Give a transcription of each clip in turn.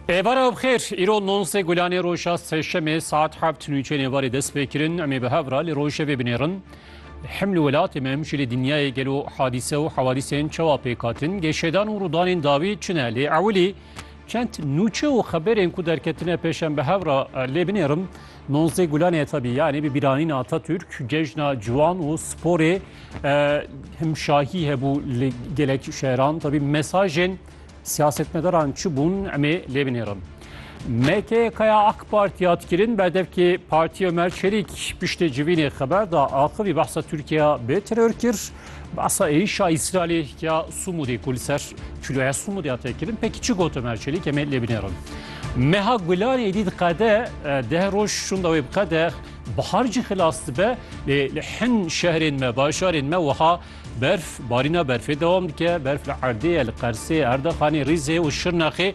Êvara bi xêr, îro nonsê gulanê roja sêşemê saet heft nûçeyên êvarê dest pê kirin. Em ê bi hev re li rojê vê binêrin. Hem li welatê me hem jî li dinyayê gelo hadîse û hewadîsên çawa pêk hatin? Gêşêdan û rûdanên dawî çi ne? Lê ewilî çend nûçe û xeberên ku derketine pêş em bi hev re lê binêrim. Nozê Gulanê ya tevî yanî bi bîranîna Atatürk cejna ciwan û sporê himşahî hebû li gelek şehran. Tevî mesajên siyasetmedaran çi bûn emê lê binêrin. MKK'ya AK Parti ya dikirin berdevkê Partiya Ömer Çelik piştê civînê xeber da axivî behsa Tirkiye bê teror kir. Bi asayîşa Îsraîlê ya Sumûdê ku li ser çîroya Sumûdê hate kirin pekî çi got Ömer Çelîk em ê lê binêrin. Meha Gulanê êdî diqede deh roj şûnda wê biqede bihar cî xilas dibe lê li hin şehrên me bajarên me wiha berf barîna berfê dewam dike berf li erdê ye li qersê erdexanê rîzê û şirnexê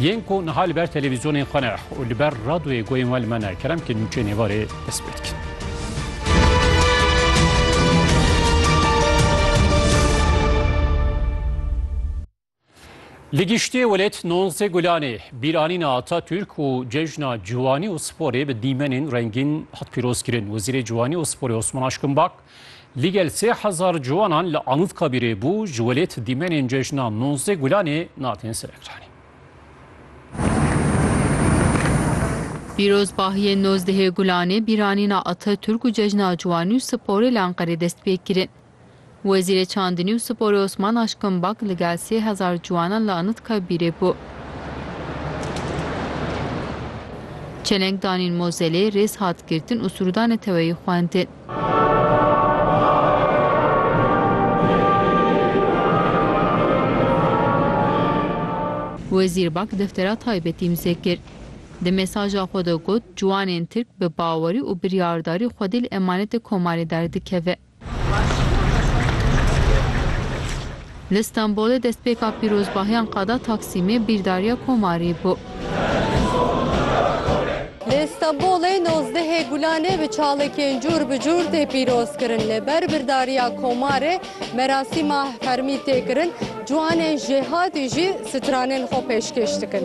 Yên ku niha li ber televîzyonên xwe ne û li ber radoyê goyên we li me ne, kerem ke nûçeyên êvarê dest pê dikin. Li giştê welêt Nonzê Gulanê, bîranîna Atatürk û cejna ciwanî û sporê bi dîmenên rengîn hat pîrozkirin. Wezîrê Ciwanî û Sporê Osman Aşkinbak Ligel sê hezar ciwanan li Anûtkabîrê bû ji welêt dîmenên cejna nonzdeh Gulanê natin ser ekranê. Pîrozbahiyên nozdehê Gulanê bîranîna Ataturk û cejna ciwanî û sporê li Enqerê dest pê kirin. Wezîrê Çandinî û Sporê Osman Aşkin Bak ligel sê hezar ciwanan li Anûtkabîrê bû. Çeleng danîn mozelê, rêz hat girtin û sûrûdanê teweyî xwendin. Wezîr Bak deftera taybetî imze kir. Di mesaja xwe de got, Ciwanên Tirk bi bawerî û biryardarî xwedî li emanetê Komarê derdikeve. Li Stenbolê destpêka pîrozbahiyan qada Taksîmê bîrdariya Komarî bû. Li Stenbolê nozdehê Gulanê bi çalekên cûr bi cûr tê pîrozkirin. Li ber birdariya Komarê merasîma fermî tê kirin. Ciwanên jêhatî jî stranên xwe pêşkêş dikin.